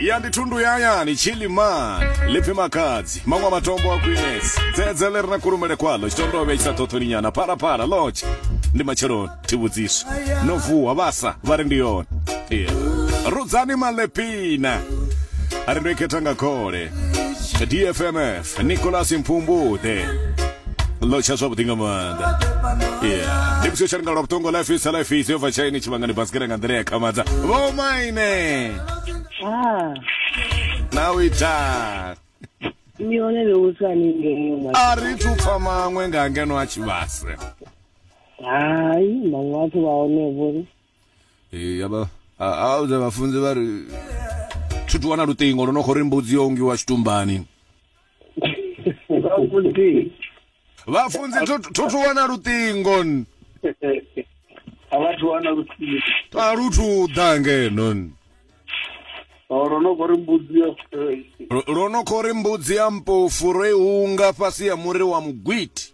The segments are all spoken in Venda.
ya ndi thundu ya hayani chiliman lipfi makadzi maṅwe a matombo a khwinesi dzedze ḽi re na kulumele kwaḽo tshitondovhe tshi sa ṱhoṱhoni nyana phalaphala lodge ndi matsheloni thivhudziso no vuwa vhasa vha ri ndi yone yeah. rudzani malepina a ri ndo i khetha nga khole dfmf nicolas mpfumbuḓe ḽo tsha zwavhuḓi nga maanḓa yeah ndi vhusio tsha ringa lwa vhuṱongo life is life is yo bva tshaini tshivhangani basikere nga nḓila ya khamadza vho maine ah. na u ita ni hone le usani ngeno a ri thu pfa maṅwe nga ngeno a tshivhase hai maṅwe a thu vha hone vhori yaba auze vhafunzi vha ri thi thu wana luṱingo lwo no khou ri mbudzi yo ungiwa tshitumbani vhafunzi thu thu wana luṱingo a vhathu wana luṱingo a lu thu ḓa ngeno Oh, ro no khou ri mbudzi ya ro no khou ri mbudzi ya mpofu ro i hunga fhasi ya muri wa mugwiti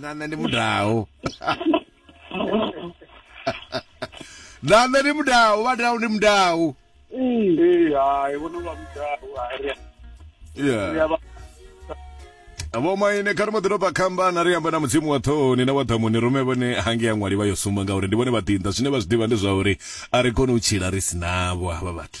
na nṋe ndi mudau na nṋe ndi mudau vha dau ndi mudau ee hai vhono vha mudau ari yeah vho maine kha ri mbo ḓi tou kambana ri amba na mudzimu wa ṱhohoni na wa ḓamuni rume vhone hange ya ṅwali vha yo sumba ngauri ndi vhone vhaḓinḓa zwine vha zwi ḓivha ndi zwa uri a ri koni u tshila ri si navho havha vhathu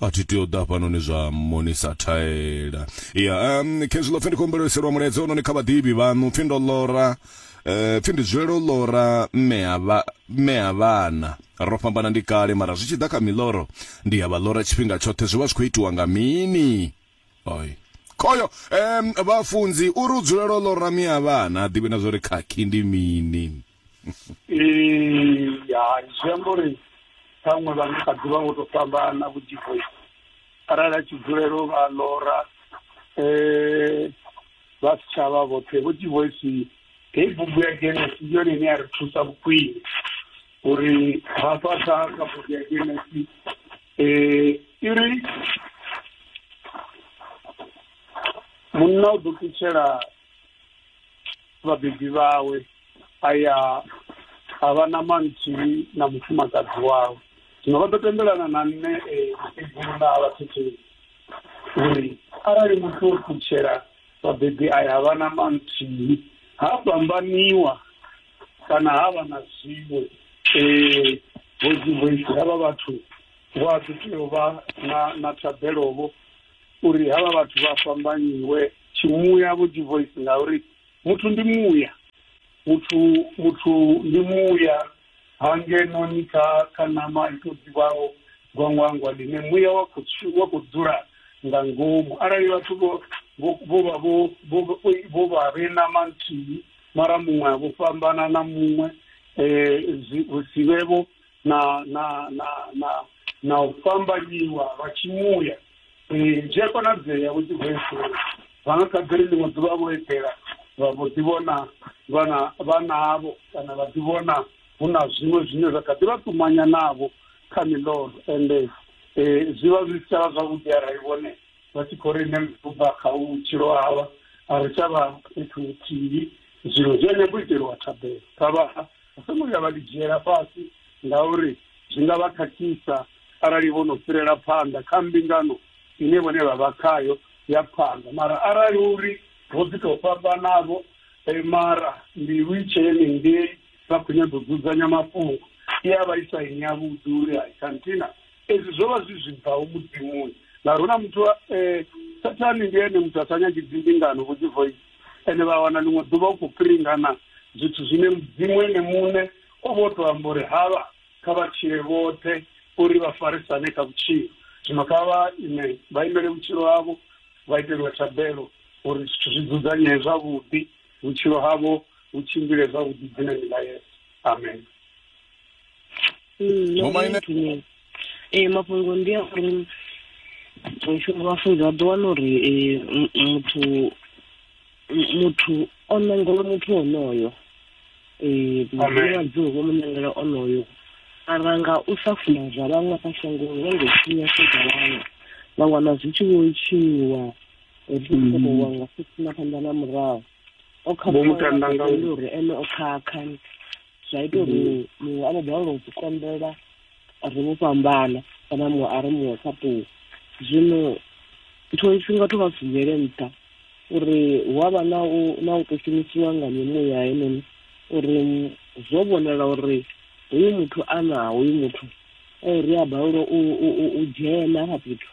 a thi tea u ḓa hafhanoni zwa monisa thaela ya um khezwi ḽo pfhi ndi khou humbela iselwa mulaedza ononi kha vhaḓivhi vhaṋu pfhi ndo ḽora um pfhi ndi dzulela u ḽora mme ha vhana ro fhambana ndi kale mara zwi tshi ḓa kha miḽoro ndi ya vha ḽora tshifhinga tshoṱhe zwi vha zwi khou itiwa nga mini oi khoyo um vhafunzi uri u dzulela u ḽora mme ha vhana a ḓivhi na zwa uri khakhi ndi mini hai zwi amba uri ṱhaṅwe vha nga kha ḓi vha vho to fhambana vhuḓifho arali a tshi dzulela u vha lora um vha si tsha vha vhoṱhe vhuḓivoisi heyi bugu ya genesi ndi yone ine ya ri thusa vhukhwini uri hafha kha kha bugu ya genesi um i ri munna u ḓo ṱutshela vhabebi vhawe a ya a vha na manthihi na mufumakadzi wawe zwino vha ḓo tendelana na nṋe mukegulu na vhathetheli uri arali muthu o ṱutshela vhabebi a ya vha na manthihi ha fhambaniwa kana ha vha na zwiwe um vhoizi havha vhathu vho a ḓi tea u vha na na thabelovho uri havha vhathu vha fhambanyiwe Tshimuya vho dzi voice ngauri muthu ndi muya. Muthu muthu ndi muya ha ngeno ni kha kha ṋama i to ḓivhaho gwangwangwa ḽine muya wa kho wa kho dzula nga ngomu arali vhathu vho vho vha vho vho vha vhe ṋama nthihi mara muṅwe a vho fhambana na muṅwe zwi sivhe vho na na na na na u fhambanyiwa lwa tshimuya Eh, zwi a konadzea vho tshivesi vha nga kha ḓi ri ḽiṅwe ḓuvha vho eḓela vha vho ḓi vhona vhana vhanavho kana vha ḓi vhona hu na zwiṅwe zwine zwa kha ḓi vha ṱumanya navho kha miḽoro ende eh, zwi vha zwi si tsha vha zwavhuḓi arali vhone vha tshi khou ri nṋe ndi khou bva kha u vhutshilo havha a ri tsha vha fhethu huthihi zwino zwi a nyago u iteliwa thabelo kha vha Vha songo vhuya vha ḽi dzhiela fhasi ngauri zwi nga vha khakhisa arali vho no fhirela phanḓa kha mbingano ine vhone vha vha khayo ya phanḓa. Mara arali hu uri ro ḓi tou fhambana-vho mara mbilu i tshee henengei vha khou nyaga u dzudzanya mafhungo, i a vha i sa ine yavhuḓi uri hai khanthina ezwi zwo vha zwi zwi bvaho Mudzimuni ngauri hu na muthu, Sathane ndi ene muthu a sa nyagi dzimbingano vho Dzivhoyisi. ende vha wana ḽiṅwe ḓuvha u khou piringana zwithu zwine Mudzimu ene muṋe o vha o tou amba uri havha kha vha tshile vhoṱhe uri vha farisane kha vhutshilo. Zwino kha vha ime, vha imele vhutshilo havho, vha iteliwe thabelo uri zwithu zwi dzudzanyee zwavhuḓi, vhutshilo havho vhu tshimbile zwavhuḓi dzi na milaedza. Amen. Mm, Vho Maine? Maine. Eh, mafhungo ndi a uri mushumo wa funza vha ḓo wana uri eh, m- muthu m- muthu o nangela muthu onoyo eh, mudzimu wa dzuu vho mu nangela onoyo mara nga u sa funa zwa vhaṅwe kha shangoni vha ngo tshinya sedza vhaṅwe vha wana zwi tshi vho tshinyiwa zwisokowa nga fhasi na phanḓa na murahu o Vho mu tanda nga- khakhauli uri ene o khakha zwa ita uri mm. muṅwe a vho balelwa u konḓela ri vho fhambana kana muṅwe a ri muṅwe kha ṱuwa zwino tshiṅwe tshifhinga thu vha si dzhiele nṱha uri hu a vha na u na u tou shumisiwa nga mimuya henoni uri zwo vhonala uri hoyu muthu a na hoyu muthu eh, ri a balelwa u dzhena ha fhethu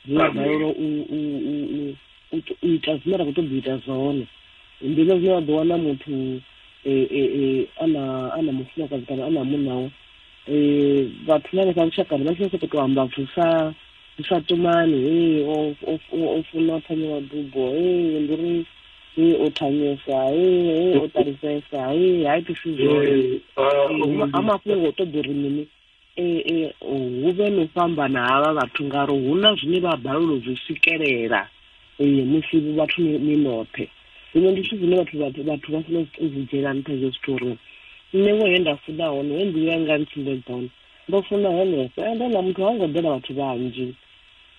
ri a balelwa u u ita zwine ra khou ṱoḓa u ita zwone ndi hezwo zwine wa ḓo wana muthu e, e, e, a na a na mufumakadzi kana a na munawe um vhathu na hanefha lushakani vha tshi sokou tou amba zwithu sa zwi sa tumani hei o funa thanyela dubo hei ndi uri hei o thanyesa hei o ṱalisesa hei ha itisi zwone ha mafhungo o ṱoḓa uri mini Ee, ee, hu vhe no fhambana havha vhathu ngaro hu na zwine vha balelwa zwi swikelela ee musi vhathu ni noṱhe zwino ndi zwithu zwine vhathu vhathu vhathu vha funa u zwi dzhiela nṱha hezwo zwithu uri nṋe wo he nda funa hone he mbilu yanga ntsumbedza hone ndo funa henefho ende na muthu ha ngo ḓela vhathu vhanzhi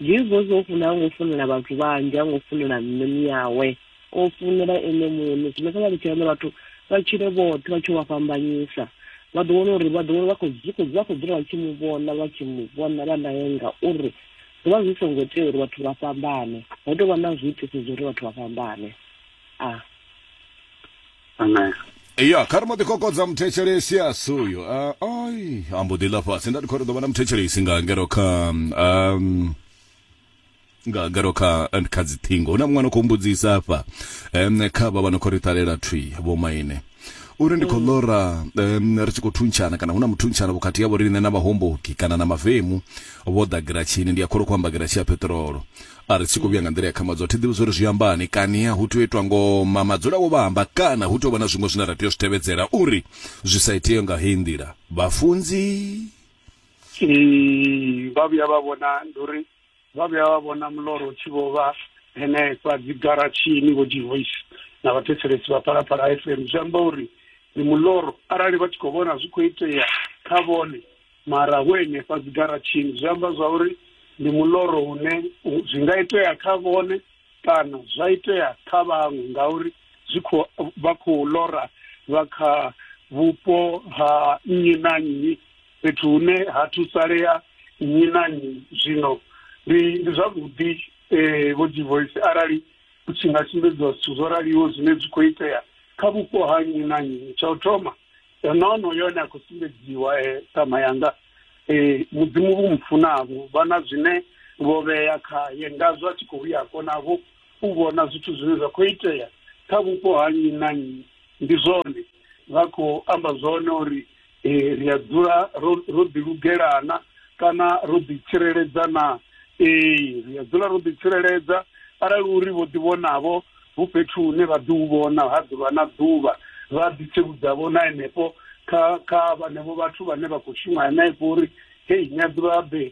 jesus o funa ha ngo funela vhathu vhanzhi ha ngo funela nṋe miyawe O funela Ene Muṋe zwine kha vha litshe vhone vhathu vha tshile vhoṱhe vha tshi u vha fhambanyisa. Vha ḓo wana uri vha ḓo vha khou zwi khou vha khou dzula vha tshi Mu vhona vha tshi Mu vhona vha Nae ngauri zwo vha zwi songo tea uri vhathu vha fhambane. Ho tou vha na zwiitisi zwa uri vhathu vha fhambane. A. Amen. Ya, kha ri mbo ḓi kokodza muthetshelesi a si uyo. A, ai, a mbo ḓi ḽa fhasi. Nda ndi khou ri ḓo vha na muthetshelesi nga ngero kha, um, nga garo kha kha dziṱhingo hu na muṅwe no khou mbudzisa afha um, kha vha vha no khou ri ṱalela thwi vho maine uri ndi khou ḽora um, ri tshi khou thuntshana kana hu na muthuntshana vhukati yavho riṋe na vhahomboki kana na mavemu vho ḓa giratshini ndi a kholo khou amba giratshi ya peṱirolo a ri tshi khou vhuya nga nḓila ya khamadzo thi ḓivhi zwori zwi ambani kania hu tea u itwa ngoma madzula wo vha amba kana hu tea u vha na zwiṅwe zwine ra tea u zwi tevhedzela uri zwi sa itee nga heyi nḓila vhafunzi vha vhuya vha vhona ndi uri vha vhuya vha vhona muloro u tshi vho vha henefha dzigaratshini vho divoice na vhathetshelesi vha phalaphala f m zwi amba uri ndi muloro arali vha tshi khou vhona zwi khou itea kha vhone mara vho henefha dzigaratshini zwi amba zwa uri ndi muloro une zwi nga itea kha vhone Kana zwa itea kha vhaṅwe ngauri zwi khou vha khou lora vha kha vhupo ha nnyi na nnyi, fhethu hune ha thusalea nnyi na nnyi. Zwino ndi ndi zwavhuḓi, Vho Dzivhoisi, arali hu tshi nga sumbedziwa zwithu zwo raliho zwine zwi khou itea kha vhupo ha nnyi na nnyi. Tsha u thoma, no no yone a khou sumbedziwa, ṱhama yanga. Ee, Mudzimu vhu mu funavho vha na zwine vho vhea khaye, ngazwo a tshi khou ya konavho u vhona zwithu zwine zwa khou itea kha vhupo ha nnyi na nnyi. Ndi zwone vha khou amba zwone uri ee, ri a dzula ro ro ḓilugela na kana ro ḓitsireledza na? Ee, ri a dzula ro ḓitsireledza arali uri vho ḓivhonavho Hu fhethu hune vha ḓo u vhona ha ḓuvha na ḓuvha, vha ḓi tsivhudza-vho na henefho kha, kha vhenevho vhathu vhane vha khou shuma henefho uri, Hei, ni a ḓivha-ḓe,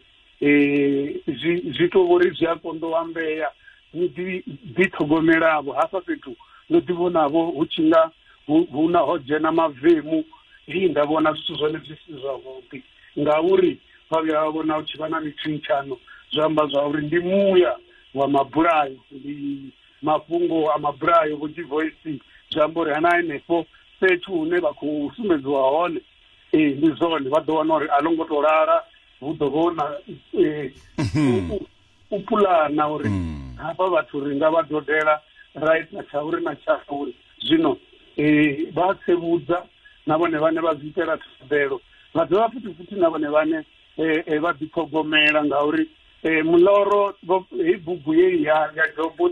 zwi, zwi tou vho ri zwi a konḓa u ambea, ni ḓi, ḓi ṱhogomela-vho. Hafha fhethu ndo ḓi vhona-vho hu tshi nga hu, hu na, ho dzhena mavemu. Hei, nda vhona zwithu zwone zwi si zwavhuḓi, ngauri vha vhuya vha vhona hu tshi vha na mithentshano, zwa amba zwa uri ndi muya wa mabulayo. Ndi. Mafhungo a mabulayo vho G-Voice zwi amba uri hana henefho fhethu hune vha khou sumbedziwa hone ee ndi zwone vha ḓo wana uri a ḽo ngo to lala hu ḓo vha na mhm. u pulana uri mm. hafha vhathu ri nga vha dodela ra ita tsha uri na tsha uri zwino um vha tsevhudza na vhone vhane vha zwi itela thabelo vha dovha futhi futhi na vhone vhane eh, eh, vha ḓiṱhogomela ngauri eh, muḽoro hei bugu ye ya ya jobo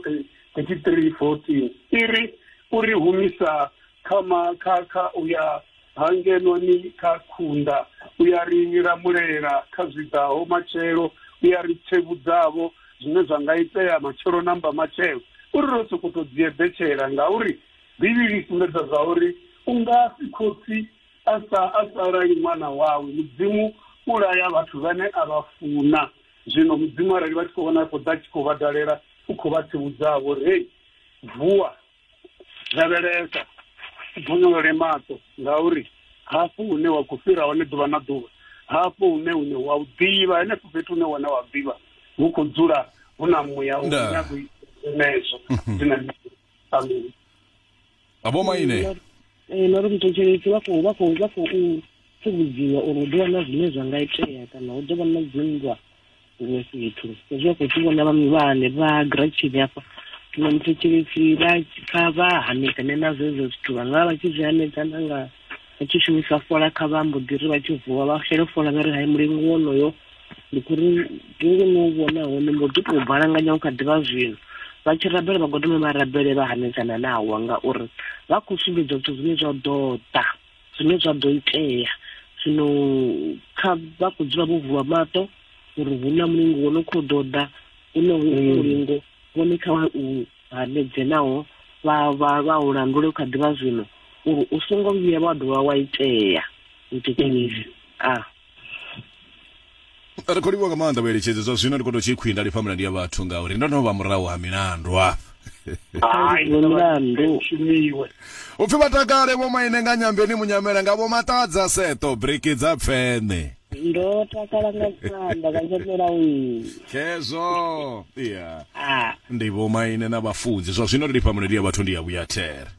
33 14 i ri u ri humisa kha ma kha kha u ya hangenoni kha khunda u ya ri lamulela kha zwiḓaho matshelo u ya ri tsevhudzavho zwine zwa nga itea matshelo namba matshelo u ri ro sokoto dzieḓetshela ngauri bivhili i sumbedza zwa uri u nga si khotsi Asa a sa lali ṅwana wawe. Mudzimu u laya vhathu vhane a vha funa. Zwino Mudzimu arali vha tshi khou vhona a khou ḓa a tshi khou vha dalela, u khou vha tsivhudza-vho uri, Hei! Vuwa! Lavhelesa! U bonyolole maṱo, ngauri hafho hune wa khou fhira hone ḓuvha na ḓuvha, hafho hune une wa u ḓivha, henefho fhethu hune wone wa ḓivha, hu khou dzula hu na muya u Ndaa. nyago u ita zwenezwo. Ndi na mbilu. amen vha vho maine eh, nori muthetshelesi vha khou vha khou vha khou tsivhudziwa uri hu ḓo vha na zwine zwa nga itea kana hu ḓo vha na dzinndwa huṅwe fhethu hezwi vha khou tshi vhona vhaṅwe vha hane vha gratshini hafha zwino muthetshelesi vha kha vha hanedzane na zwezo zwithu vha nga vha tshi zwi hanedzana nga vha tshi shumisa fola kha vha mbo ḓi ri vha tshi vuwa vha shele fola vha ri hai mulingo wonoyo ndi khou ri vhungu no vhona hone mbo ḓi tou balanganya u kha ḓivha zwino vha tshi rabela vha godome vha rabele vha hanedzana na hawa ngauri vha khou sumbedza zwithu zwine zwa ḓo ḓa zwine zwa ḓo itea zwino kha vha khou dzula vho vuwa maṱo uri hu na mulingo wo no khou ḓo ḓa hu na hu mm. mulingo vhone kha u hanedze naho vha vha vha u landule kha ḓivha zwino uri u songo vhuya wa dovha wa itea u thetshelesi mm. a ah. ri khou livhuwa nga maanḓa vhueletshedzi zwa zwino ndi khou tou tshi khwinda lifha milandu ya vhathu ngauri ndo no vha murahu ha milandu hafha hai milandu shumiwe upfi vha takale vho maine nga nyambeni munyamela nga vho maṱadza seto breki dza pfene ndo takala nga maanḓa nga nyamela u khezwo ya ndi vho maine na vhafunzi zwa zwino ri lifha milandu ya vhathu ndi ya vhuya there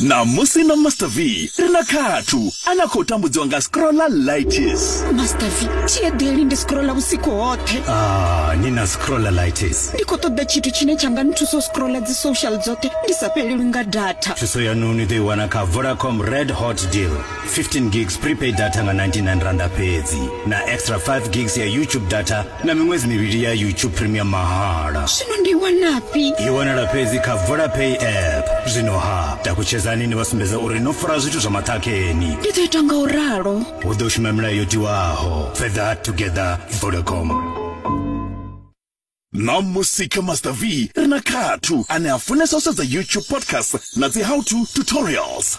Ṋamusi na Master V ri na khathu a na khou tambudziwa nga scrolla lightis. Master V, thi eḓeli ndi scrolla vhusiku hoṱhe. Ah, ni na scrolla lightis. Ndi khou ṱoḓa tshithu tshine tsha nga nthusa u scrolla dzi social dzoṱhe ndi sa fhelelwi nga data. Thuso yanu ni ḓo i wana kha Vodacom Red Hot Deal. 15 gigs prepaid data nga 99 randa fhedzi na extra 5 gigs ya YouTube data na miṅwedzi mivhili ya youtube premium mahala zwino ndi wanafhi i wanala fhedzi kha vodapay app zwino ha takutshedzani ni vha sumbedza uri no fara zwithu zwa maṱhakheni ndi ḓo ita nga u ralo hu ḓo shuma milayo yo tiwaho further together vodacom na musika master v ri na khathu ane a funesa u sedza youtube podcast na dzi how to tutorials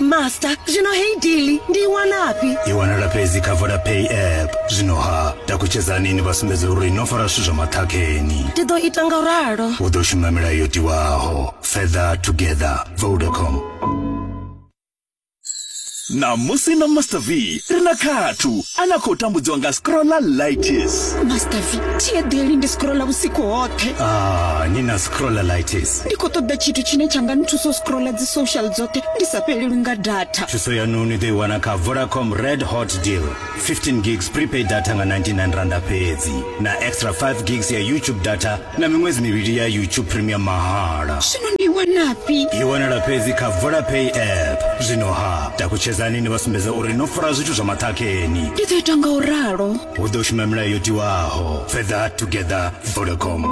master zwino hei dili ndi i wanafhi i wanala fhedzi kha vodapay app zwino ha takutshedzani ni vha sumbedze uri no fara zwithu zwa maṱhakheni ndi ḓo ita nga ralo u ḓo shuma milayo yo tiwaho feather together vodacom na musi na master v ri na khathu a na khou tambudziwa nga scrolla lightis master v thi eḓeli ndi scrolla vhusiku hoṱhe ah, ni na scrolla lightis ndi khou ṱoḓa tshithu tshine tsha nga nthusa u scrolla dzi social dzoṱhe ndi sa fhelelwi nga data thuso yanu ni ḓo i wana kha vodacom red hot deal 15 gigs prepaid data nga 99 randa fhedzi na extra 5 gigs ya youtube data na miṅwedzi mivhili ya youtube premium mahala zwino ndi wanafhi i wanala fhedzi kha vodapay app zwino ha takutshedzani ni vha sumbedza uri no fara zwithu zwa maṱhakheni ndi ḓo ita nga u ralo hu ḓo shuma milayo yo tiwaho fedha together vodacom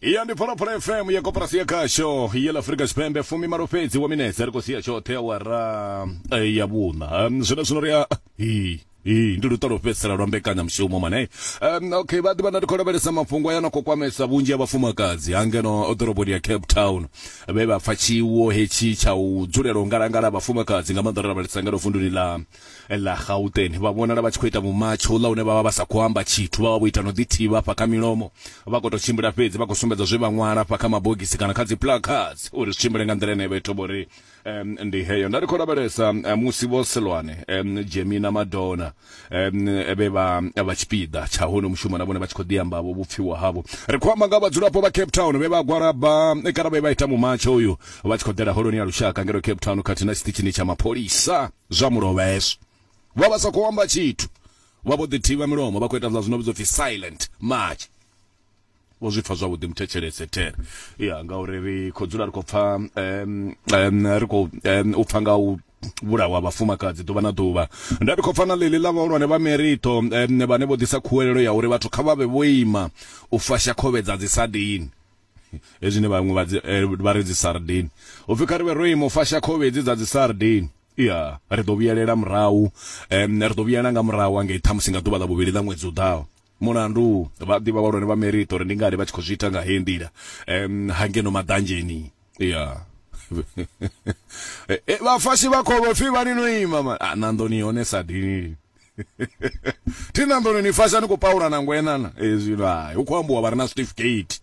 ya ndi phalaphala fm ya koporasi ya khasho ya ḽa afurika tshipembe fumi malo fhedzi wa minetse ri khou sia tshoṱhe awara eh, ya vhuṋa um, zwino zwino ri a hi hi ndi luṱa lwo fhedzisela lwa mbekanyamushumo mane um, okay vha ḓivha na ndi khou lavhelesa mafhungo aya na khou kwamesa vhunzhi ha vhafumakadzi ha ngeno ḓoroboni ya cape town vhe vha pfa tshiwo hetshi tsha u dzulela u ngalangala ha vhafumakadzi nga maanḓa ro lavhelesa ngeno vunduni ḽa ḽa Gauteng vha vhonala vha tshi khou ita mumatsho uḽa une vha vha vha sa khou amba tshithu, vha vha vho ita no ḓithivha afha kha milomo, vha khou tou tshimbila fhedzi vha khou sumbedza zwe vha ṅwala afha kha mabogisi kana kha dzi placards uri zwi tshimbile nga nḓila ine ya vha i thoma uri ndi heyo. Nda ri khou lavhelesa musi Vho Seloane, Jemmy na Madona vhe vha vha tshipiḓa tsha hono mushumo na vhone vha tshi khou ḓi amba vho vhupfiwa havho. Ri khou amba nga vhadzulapo vha Cape Town vhe vha gwalaba kana vhe vha ita mumatsho uyu vha tshi khou ḓela Holoni ya Lushaka ngeno Cape Town khathihi na tshiṱitshini tsha mapholisa. Zwa mu lovha hezwo. Vha vha sa khou amba tshithu. Vha vho ḓi thivha milomo, vha khou ita zwa zwino vhidzwa u pfi silent march. Vho zwi pfa zwavhuḓi muthetshelese there. Ya, ngauri ri khou dzula ri khou pfa, ri khou u pfa nga u vhulawa ha vhafumakadzi ḓuvha na ḓuvha. Nda ndi khou pfa na ḽeḽi ḽa vhahulwane vha Merito vhane vho ḓisa khuwelelo ya uri vhathu kha vha vhe vho ima u fasha khovhe dza dzisadini. hezwi ne vhaṅwe vha dzi eh, vha ri dzi sardine upfi kha ri vhe ro ima u fasha khovhe hedzi dza dzi sardine ya ri ḓo vhuyelela murahu um ri ḓo vhuyelela nga murahu angei ṱhamusi nga ḓuvha ḽa vhuvhili ḽa ṅwedzi u ḓaho mulandu vha ḓivha vhahulwane vha merito uri ndi ngani vha tshi khou zwi ita nga heyi nḓila um hangeno maḓanzheni ya eh, eh, vhafashi vha khovhe pfi vha ni no ima ma ah, na nḓoni hone sadini thi na nḓuni ni fasha ni khou paula na ngwenana hezwi no hai hu khou ambiwa vha re na certificate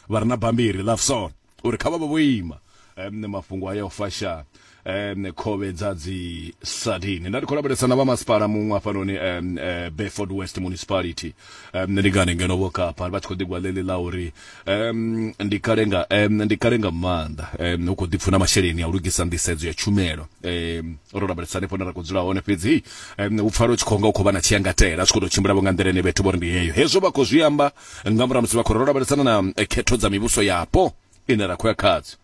vha re na bambiri ḽa fsona uri kha vha vha vho ima um mafhungo aya o fasha um khovhe dza dzi sadini nda ndi khou lavhelesa na vha masipala muṅwe hafhanoni um eh, Beaufort West Municipality um, ndi ngani ngeno vho kapa vha tshi khou ḓigwa ḽeḽi ḽa uri um, ndi kale nga um, ndi kale nga maanḓa um, hu khou ḓipfuna masheleni a u lugisa nḓisedzo ya tshumelo um, ro lavhelesa hanefho ne ra khou dzula hone fhedzi um, u pfala u tshi khou nga u khou vha na tshiyangatela a tshi khou tou tshimbilavo nga nḓila ine vhethu vho ri ndi heyo hezwo vha khou zwi amba nga murahu musi vha khou ro lavhelesana na eh, khetho dza mivhuso yapo ine ra khou ya khadzo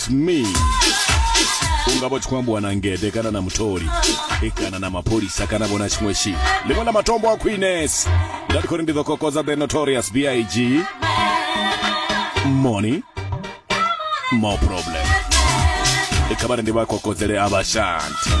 it's me unga vha tshi khou ambiwa na ngede kana na mutholi e kana na mapholisa kana vhona tshiṅwe tshi ḽiṅwe ḽa matombo a khwines nda ndi khou ri ndi ḓo kokodza the notorious big money more problem kha vha ri ndi vha kokodzele a vhashanti